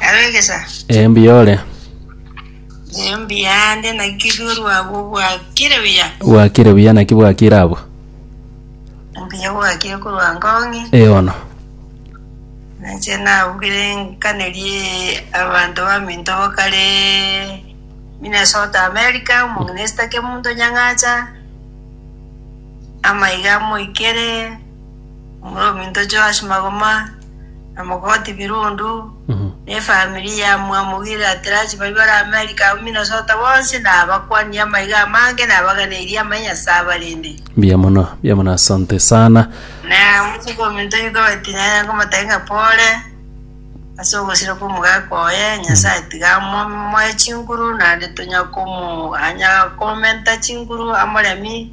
Abegesa, Ee mbuya ore. nyeyo mbiyande naki ruru agwo bwakire buya. Bwakire buya naki bwakire abwo. Mbuya bwakire korwa ngong'i. Ee ono. Nache nabugire nkanerie abanto baminto bakare Minnesota America, omong'ina ke munto nyang'acha, amaiga amoikere. Omominto Joash magoma, na mogoti Birundu, ne efamiri ya mwamogire Aterachi baria bare Amerika abwo Minnesota bonsi, na abakwani amaiga amange, na abaganeirie amaya Nyasae abarende. Mbuya mono, mbuya mono, asante sana. Na botuko ominto yuka batinanire nkomotebia ng'a pole ase ogosirwa kw'omogaka oye, Nyasae tiga amomoe chinguru, naende tonyakomanya komenta chinguru amoremi.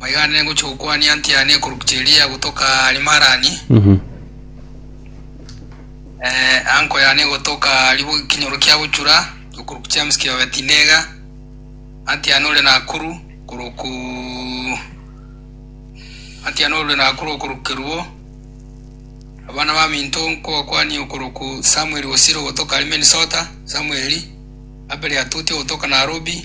Maiga nere ngochia gokwania ntiane ekorokwa cheria gotoka Arimarani, eh, anko yane gotoka ribo ekinyoro kia gochura, ekorokwa James kia Betinega, antiane ore Nakuru, koroku antiane ore Nakuru okoroku Kerubo. Abana ba minto nkobakwanie okoroku Samuel Osiro gotoka Minnesota, Samuel, Abel Atuti gotoka Nairobi,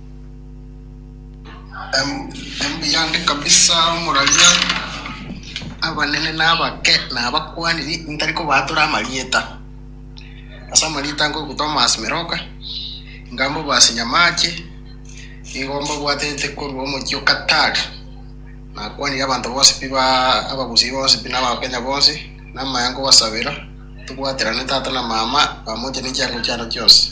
Omuyande kabisa omoraria, abanene na abake na abakuani ntari kobaatora amarieta. Ase amarieta nkoigwa Thomas Meroka, Inga Mbobazi Nyamache, nigo mbabwatete korwa omochie o Qatar. Nakwanire abanto bonsi pi ba abagusii bonsi pi na abakenya bonsi, na amayengo gosabera, tobwaterane tata na mama, pamoja ne chiango chiane chionsi.